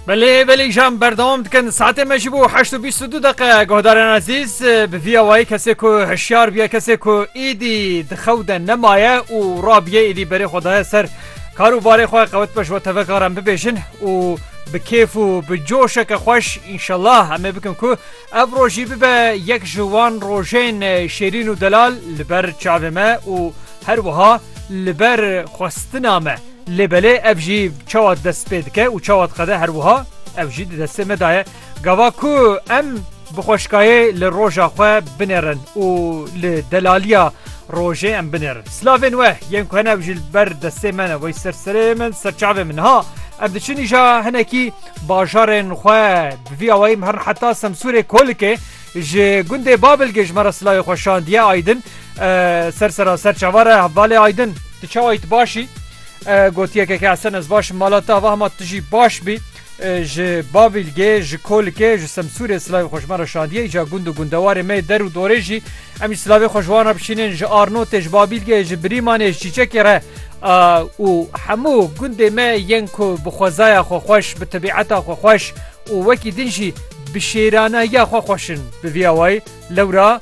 Belê belê jam berdewam dikin saetê me ji bo heşt û bîst û du deqe guhdarên ezîz bi vîya wayî kesê ku hişyar biye kesê ku êdî di xew de nemaye û rabiye êdî berê xwe daye ser kar û barê xwe qewet be ji bo tevekaran bibêjin û bi kêf û bi coşeke xweş înşallah em ê bikin ku ev rojî bibe yek ji wan rojên şêrîn û delal li ber çavê me û her wiha li ber xwestina me. Lê belê ev jî çawa di dest pê dike û çawa diqede her wiha ew jî di destê me de ye. Gava ku em bi xweşkayê li roja xwe binêrin û li delaliya rojê em binêrin. Silavên we yên ku hene ew jî li ber destê me ne wey ser serê min ser çavê min niha em diçin îja hinekî bajarên xwe bi vî awayî em herin heta Semsûrê Kolikê Ji gundê Babilgê ji me re silayê xwe şandiye Aydin ser sera ser çavar e hevalê Aydin tu çawa yî tu baş î Gotî yekeke Esen ez baş im mala te ava hema tu jî baş bî ji Babilgê ji Kolikê ji Semsûrê silayê xwe ji me re şandiye îca gund û gundewarê me der û dorê jî em jî silavê xwe ji wan re bişînin ji Arnotê ji Babilgê ji Birîmanê ji Çîçekê re û hemû gundê me yên ku bi xwezaya xwe xweş bi tebîeta xwe xweş û wekî din jî bi şêranahiya xwe xweş in. Bi vî awayî lewra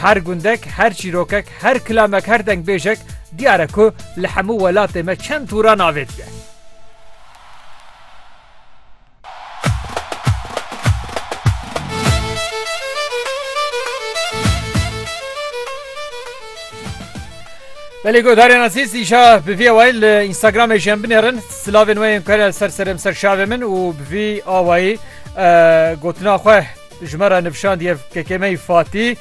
her gundek, her çîrokek, her kilamek, her dengbêjek diyar e ku li hemû welatê me çend tûra navê dibe. Belê guhdarên ezîz îşa bi vî awayî li Înstagramê jî em binêrin. Silavên we yên kare ser serê min, ser şavê min û bi vî awayî gotina xwe ji me re nivşandiye kekêmeyî Fatî.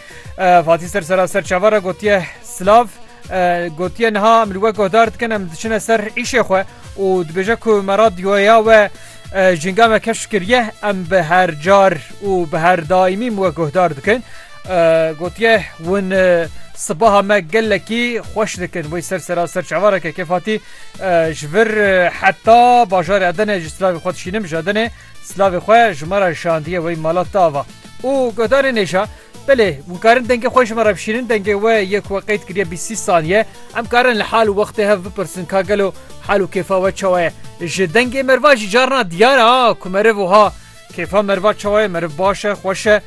Fatî ser sera ser çavan re gotiye silav. Gotiye niha em li we guhdar dikin em diçine ser îşê xwe û dibêje ku me radyoya we jinga me keş kiriye em bi her car û bi her daîmî min we guhdar dikin. Gotiye hûn sibaha me gelekî xweş dikin wê ser sera ser çavan re kekê Fatî. Ji vir heta bajarê Edenê ji silavê xwe dişînim ji Edenê silavê xwe ji me re şandiye wey mala te ava û guhdarê nêja belê hûn karin dengê xwe ji me re bişînin dengê we yê ku we qeyd kiriye bîst sî saniye em karin li hal û wextê hev bipirsin ka gelo hal û kêfa we çawa ye ji dengê merva jî carna diyar e a ku meriv wiha kêfa merva çawa ye meriv baş e xweş e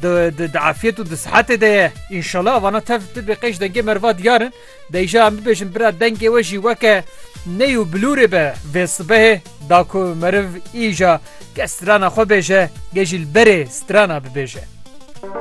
di di di afiyet û di sihetê de ye înşallah vana tev tibê qey ji dengê merva diyar in Bêyja em bibêjin bira dengê we jî weke ney û bilûrê be vê sibehê da ku meriv îja ke strana xwe bêje gê jî li berê strana bibêje.